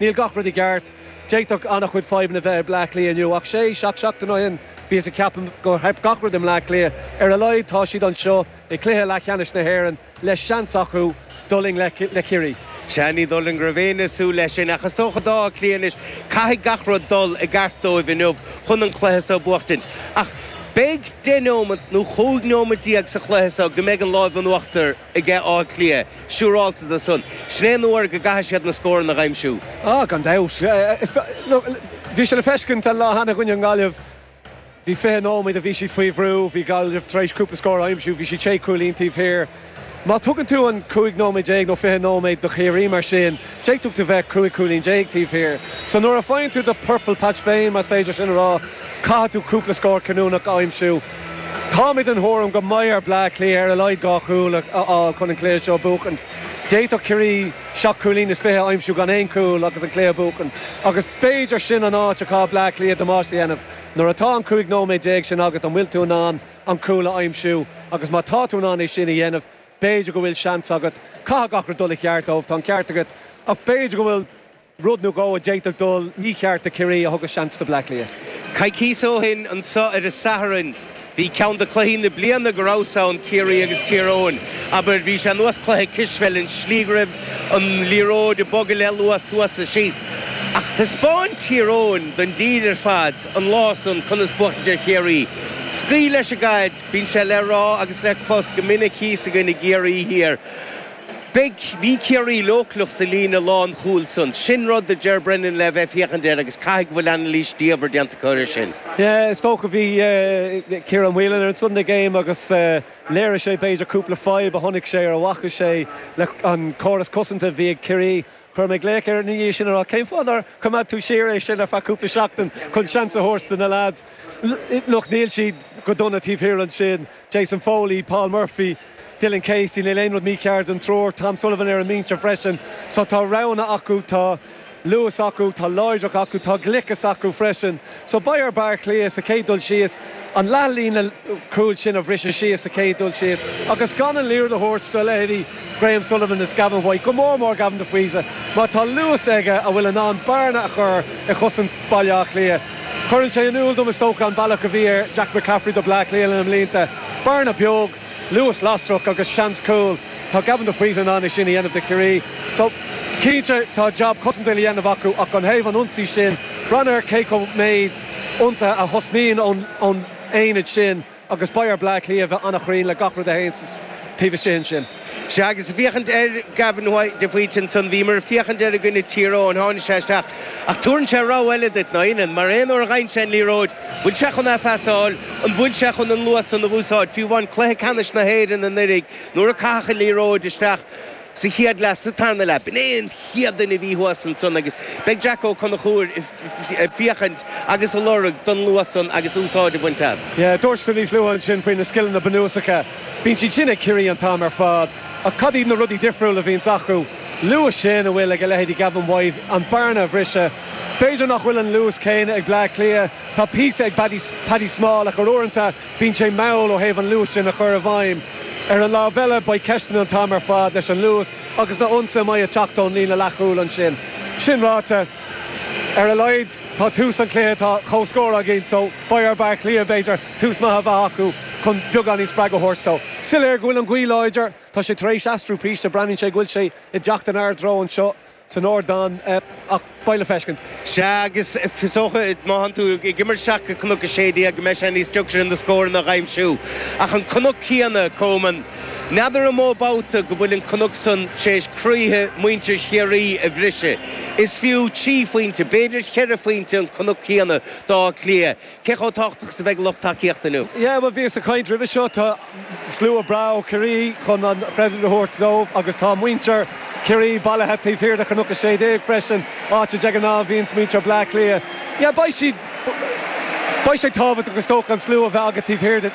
Níl gach rud i gceart. D'fhéadfadh an-chuid fadhbanna bheith i Bleá Cliath inniu, ach sé, seacht seachtain ó shin bhíothas ag ceapadh gur theip gach rud i mBleá Cliath. Ar a laghad tá siad anseo i gcluiche leathcheannais na hÉireann le seans acu dul i ngleic le Ciarraí. Sea, ní dóigh liom go raibh éinne ag súil leis sin, ach is dócha d'Áth Cliath anois, caithfidh gach rud dul i gceart dóibh inniu chun an cluiche so a bhuachtaint. Ach beidh deich neomat nó chúig neomat déag sa chluiche so go mbeidh an lámh in uachtar. aige Áth Cliath siúrálta de san. Sin é an uair go gcaithfidh siad na scóranna a aimsiú. Ah, gan dabht. Bhí sé le feiscint an lá cheana i gcoinne na Gaillimhe. Bhí fiche nóiméad a bhí siad faoi bhrú. Bhí Gaillimh tar éis cúpla scór a aimsiú. Bhí siad sé chúilín taobh thiar. Má thugann tú an cúig nóiméad déag nó fiche nóiméad do Chiarraí mar sin, d'fhéadfadh tú bheith cúig chúilín déag taobh thiar. So nuair a faigheann tú do 'purple patch' féin, más féidir é sin a rá, caithfidh tú cúpla scór cinniúnach a aimsiú. Táimid den thuairim go mbeidh ar Bleá Cliath ar a laghad dhá chúl a fháil chun an cluiche seo a bhuachaint. D'fhéadfadh Ciarraí seacht cúilín is fiche a aimsiú gan aon chúl agus an cluiche a bhuachaint agus b'fhéidir sin an áit a chaithfidh Bleá Cliath damáiste a dhéanamh. Nuair atá an cúig nóiméad déag sin agat an bhfuil tú in ann an cúl a aimsiú agus má tá tú in ann é sin a dhéanamh b'fhéidir go bhfuil seans agat. Caithfidh gach rud dul i gceart dóibh, tá an ceart agat, ach b'fhéidir go bhfuil. Rud nó dhó a d'fhéadfadh dul mícheart do Chiarraí a thugas seans do Bhleá Cliath. Coicíos ó shin anseo ar an Satharn, bhí ceann de cluichí na bliana go rabhas ann, Ciarraí agus Tír Eoghain. Abair, bhí sé ar nós cluiche cispheile, an slí go raibh an liathróid ag bogadh le luas suas is síos. Ach thaispeáin Tír Eoghain don dtír ar fad an lá san conas buachtaint ar Chiarraí. Scaoil leis an gcaid, bíonn sé le rá agus le clos go minic thíos againn i gCiarraí Thiar. Bhuel, bhí Ciarraí leochaileach sa líne lánchúil san. Sin rud do Ger Brennan le bheith ag féachaint air agus caithfidh go bhfuil anailís diamhair déanta acu ar sin. Is dócha go raibh Ciarán Whelan ar an Sunday Game agus léirigh sé b'fhéidir cúpla fadhb a chonaic sé ar a bhfaca sé le an córas cosanta a bhí ag Ciarraí. Chuir mé glaoch air ina dhiaidh sin a rá cén fáth nár choimeád tú siar é sin ar feadh cúpla seachtain chun seans a thabhairt do na lads. Look, níl siad go dona taobh thiar ansin. Jason Foley, Paul Murphy, Dylan Casey, níl aon rud mícheart leis an triúr, Tom Sullivan ar an mbinse freisin. So tá roghanna acu, tá luas acu, tá láidreacht acu, tá gliceas acu freisin. So beidh ar Bleá Cliath sa chéad dul síos an leathlíne cúil sin a bhriseadh síos sa chéad dul síos agus gan an liathróid a thabhairt do leithéidí Graham Sullivan is Gavin White, go mór mór Gavin de Faoite mar tá luas aige a bhfuil in ann bearna a chur i gcosaint Bhaile Átha Cliath. Cuireann sé in iúl dom, is dócha, an bealach a bhí Jack McCaffrey do Bhleá Cliath leis na blianta, bearna beag, luas lasrach agus seans cúl. Tá Gavin de Faoite in ann é sin a dhéanamh do Chiarraí. So, cinnte, tá jab cosanta le déanamh acu ach ó thaobh an ionsaí sin, braitheann ar cé mhéad ionsaithe a thosnaíonn ón ionad sin. Agus beidh ar Bleá Cliath a bheith an-chruinn le gach rud a théann taobh istigh ansin. Sea, agus ag féachaint ar Gavin White, de Faoite ansan, bhíomar ag féachaint air i gcoinne Tír Eoghain, tháinig sé isteach ach tabharann sé rabhadh eile duit, ná tugann, mar aon uair a gheibheann sé an liathróid, bhfuil sé chun é a phasáil, an bhfuil sé chun an luas san a úsáid, fiú amháin Cluiche Ceannais na hÉireann anuraidh, nuair a caitheadh an liathróid isteach, sa chéad leath sa tarna leath. B'in é an chéad duine a bhí thuas ansan agus beidh Jack Ó Conchúir ag féachaint agus a lorg don luas san agus úsáid a bhaint as. Dúirt tú níos luaithe ansin faoi na scileanna bunúsacha. Bíonn siad sin ag Ciarraí an t-am ar fad. Ach cad iad na rudaí difriúla a bhíonns acu? Luas sin a bhfuil ag a leithéidí Gavin White, an bearna a bhriseadh. B'fhéidir nach bhfuil an luas céanna ag Bleá Cliath. Tá píosa ag Paddy Small ach uaireanta, Bíonn sé mall ó thaobh an luais sin a chur i bhfeidhm. Ar an lámh eile, beidh ceisteanna an t-am ar fad leis an luas agus na h-ionsaithe a mbeidh ag teacht ón líne leathchúil ansin. Sin ráite, ar a laghad tá tús an chluiche atá comhscór againn so beidh ar B'Ath Cliath, b'fhéidir, tús maith a bheith acu chun beagáinín spreagadh a thabhairt dóibh. Soiléir go bhfuil an ghaoth láidir. Tá sé tar éis aistriú píosa. Breathnaíonn sé go bhfuil sé ag teacht inár dtreo anseo. san ardán ach beidh le feiscint. Sea, agus is dócha, má tánn tú ag imirt isteach go Cnoc 16, go mbeidh sé níos deacra na scóranna a dh'aimsiú. Ach an Cnoc céanna, Coman, n'fheadar an mó babhta go bhfuil an Cnoc san tar éis croíthe muintir Chiarraí a bhriseadh. Is fiú trí phointe, b'fhéidir cheithre phointe an Cnoc céanna d'Áth Cliath. Cé chomh tábhachtach is a bheidh lucht tacaíochta inniu? Yeah, bhuel bhíos ag caint roimhe seo, tá slua breá ó Chiarraí chun an chreidiúint a thabhairt dóibh agus tá muintir Chiarraí bailithe taobh thiar i gCnoc 16 freisin, áit de ghnáth a bhíonns muintir Bhleá Cliath. Yeah, beidh siad, beidh sé tábhachtach is dócha an slua a bheith agat taobh thiar duit.